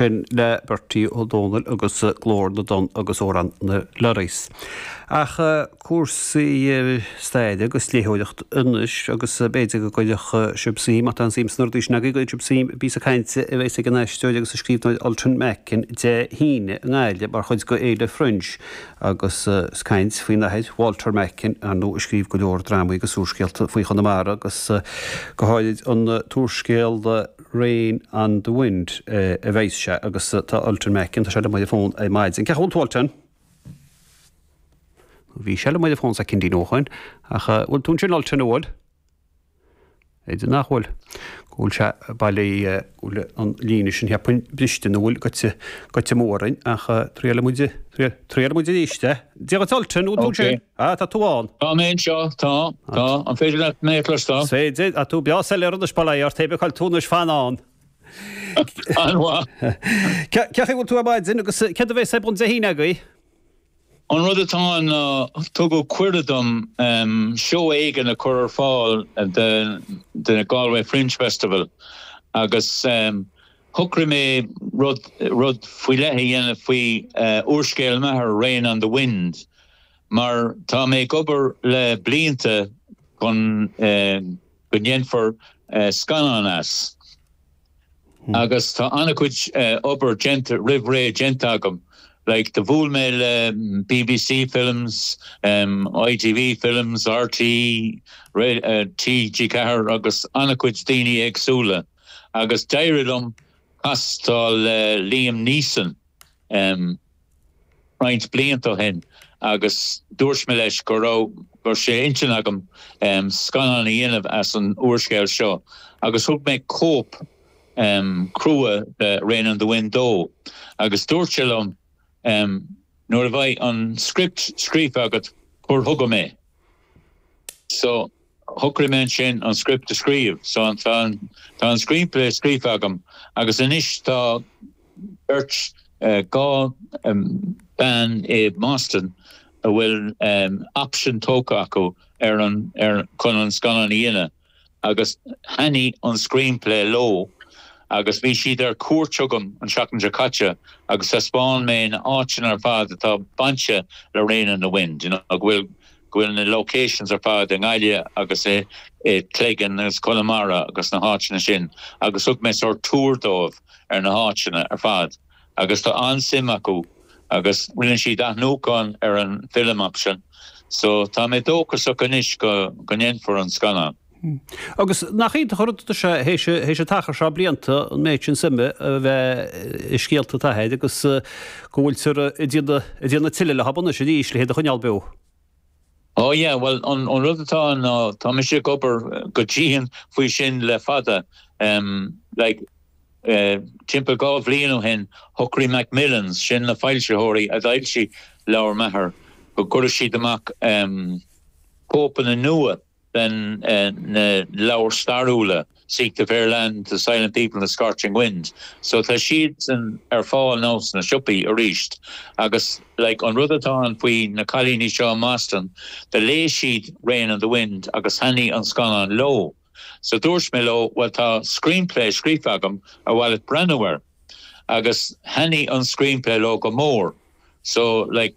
Sin le Bertie Ó Domhnaill agus Glór na dTonn agus Amhrán na Lorries. Ach cúrsaí staire agus léitheoireacht anois agus b'fhéidir go gcuirfeadh sibh suim, má tá aon suim san ábhar sin agaibh, go gcuirfidh sibh suim i bpíosa cainte a bheas ag an aisteoir agus an scríbhneoir Ultan Macken Dé hAoine i nGaillimh mar chuid de Fhéile Fringe agus é ag caint faoina athair Walter Macken, ar ndóigh, a scríobh go leor drámaí agus úrscéalta faoi Chonamara agus go háirid an t-úrscéal. rain on the wind a bhí aige sin agus tá Ultan Macken, tá sé liom ar an bhfón ar maidin. Cén chaoi a bhfuil tú Ultan? Nó bhí sé liom ar an bhfón soicindín ó chianaibh ach a bhfuil tú ansin Ultan a bhfuil? B'fhéidir nach bhfuil. Go bhfuil sé b'fhéidir go bhfuil an líne sin tar éis briseadh nó bhfuil gaibhte gaibhte amú orainn ach triailfimid triailfimid arís é. Dia dhuit Ultan, bhfuil tú ansin? Ah, tá tú ann. Tá mé anseo, tá, tá. An féidir leat mé a chloisteáil? Is féidir, tá tú breá soiléir anois, pé ar bith taobh a bhfuil tú anois, fan ann. An-mhaith. Cé chaoi bhfuil tú ar maidin agus céard a bheas ag tarlú Dé hAoine agaibh? An rud atá ann ná tugadh cuireadh dom seó éigin a chur ar fáil den Galway Fringe Festival agus shocraigh mé rud faoi leith a dhéanamh faoi úrscéal m'athair, Rain on the Wind. Mar tá mé ag obair le blianta chun go ndéanfar scannán as agus tá an-chuid obair déanta roimh ré déanta agam like do bhuail mé le bbc Films, ITV Films, rte, TG4 agus an-chuid daoine éagsúla agus d'éirigh liom castáil le Liam Neeson. roinnt blianta ó shin agus dúirt mé leis go raibh sé ar intinn agam scannán a dhéanamh as an úrscéal seo agus thug mé cóip chrua de Rain on the Wind dó agus dúirt sé liom nuair a bheidh an script scríofa agat cuir chugam é. Shocraigh mé ansin an script a scríobh. So tá an screenplay scríofa agam agus anois tá beirt, dhá bean i mBoston a bhfuil option tógtha acu ar an, ar, chun an scannán a dhéanamh agus thaitnigh an screenplay leo agus bhí siad ar cuairt chugam an seachtain seo caite agus thaispeáin mé na áiteanna ar fad atá bainte le Rain on the Wind, you know, go bhfuil. go bhfuil na locations ar fad i nGaillimh agus i Cleggan agus Conamara agus na háiteanna sin agus thug mé sórt tour dóibh ar na háiteanna ar fad agus tá an-suim acu agus rinne siad athnuachan ar an film option so tá mé dóchasach anois go ndéanfar an scannán. Hm. Agus nach iontach an rud atá sé théis théis an t-achar seo blianta an méid suime a bheith i scéalta t'athar agus go bhfuiltear ag déanamh tuilleadh leo anois arís le hiad a choinneáil beo. Ó yeah, bhuel an rud atá ann ná tá mise ag obair go dian faoi sin le fada. Like timpeall dhá bhliain ó shin shocraigh Macmillans, sin na foilsitheoirí a d'fhoilsigh leabhar m'athar, go gcuirfeadh siad amach cóipeanna nua. den na leabhair stairiúla, Seek the Fair Land, The Silent People and The Scorching Wind. So tá siadsan ar fáil now sna siopaí arís. Agus like an rud atá ann faoi na cailíní seo i mBoston, do léigh siad Rain on the Wind agus thaithnigh an scannán leo. So dúirt mé leo, bhuel tá screenplay scríofa agam ar mhaith leat breathnú air. agus thaitnigh an screenplay leo go mór so like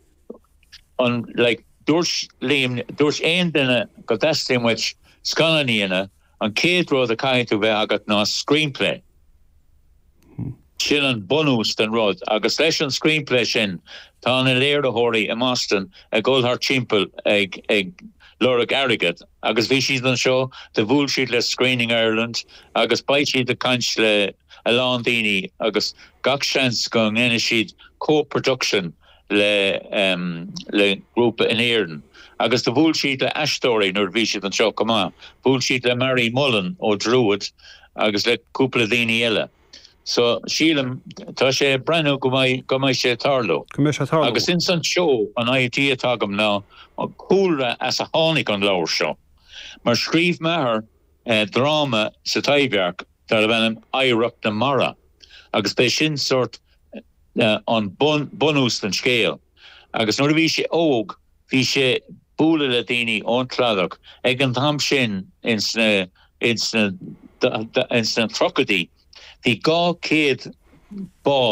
an like dúirt dúirt aon duine go dteastaíonn uaidh scannán a dhéanamh an chéad rud a chaithfidh tú bheith agat ná screenplay sin an bunús den rud agus leis an screenplay sin tá na léiritheoirí i mBoston ag dhul thart timpeall ag ag lorg airgead agus bhí siad anseo do bhuail siad le Screening Ireland agus beidh siad ag caint le a lán daoine agus gach seans go ndéanfaidh siad co-production le grúpa in Éirinn agus do bhuail siad le aisteoirí nuair a bhí siad anseo chomh maith. Bhuail siad le Marie Mullen ó Druid agus le cúpla daoine eile. So sílim, tá sé ag breathnú go mbeidh sé ag tarlú. Agus ins an seó, an idea atá agam ná an cúlra as a tháinig an leabhar seo. Mar scríobh m'athair, dráma sa Taibhdhearc darb ainm Oidhreacht na Mara agus b'é sin sórt an bunús don scéal agus nuair a bhí sé óg bhí sé bualadh le daoine ón Cladach ag an t-am sin ins na ins na ins na tríochaidí bhí dhá céad bád